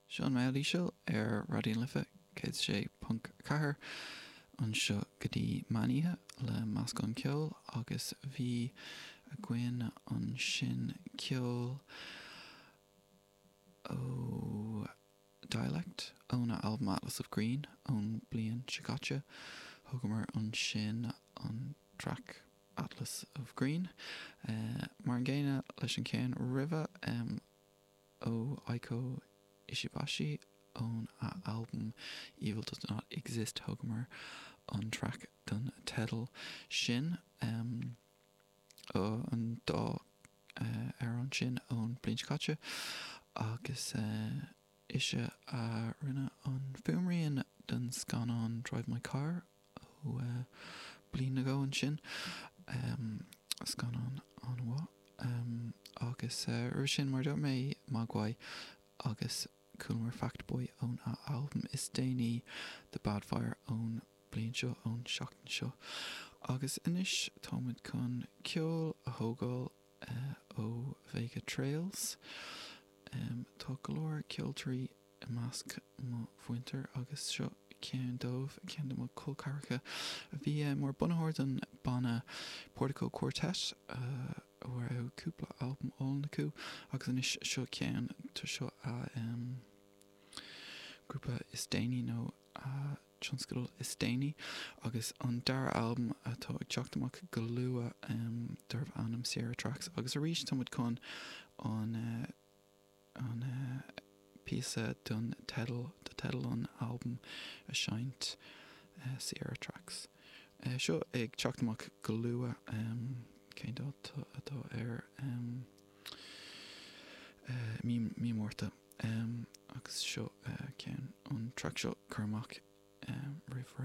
Seo an Maol Íseal ar Raidió na Life 106.4 anseo go dtí meán oíche le meascán ceoil agus bhí againn ansin ceol ó Dialect óna albam Atlas of Green ón bliain seo caite. Thugamar ansin an traic. Atlas of Green. Mar an gcéanna leis an gceann roimhe, ó Eiko Ishibashi, ón a albam Evil Does Not Exist, thugamar an traic don teideal sin. An dá amhrán sin ón bliain seo caite agus. Is ea, a rinne an fuaimrian don scannán Drive My Car ó bliain nó dhó ansin. Scannán an-mhaith. Agus roimhe sin, mar a dúirt mé, Mogwai agus chualamar Fact Boy ón a albam is déanaí, The Bad Fire ón bliain seo, ón tseachtain seo. Agus anois táimid chun ceol a thógáil. ó Vega Trails. Tá go leor ceoltóirí i measc mo mhuintir agus seo ceann dóibh, ceann de mo cholceathracha a bhí mar bunaitheoir don banna Portico Quartet a raibh cúpla albam álainn acu agus anois seo ceann, tá seo a grúpa is déanaí nó a. tionscadal is déanaí agus an dara albam atá ag teacht amach go luath darbh ainm Sierra Tracks agus arís tá muid chun an an píosa don teideal do teideal an albaim a seinnt, Sierra Tracks. Seo ag teacht amach go luath cén dáta atá air, mí mí Márta. Agus seo ceann, an traic seo curtha amach roimh ré.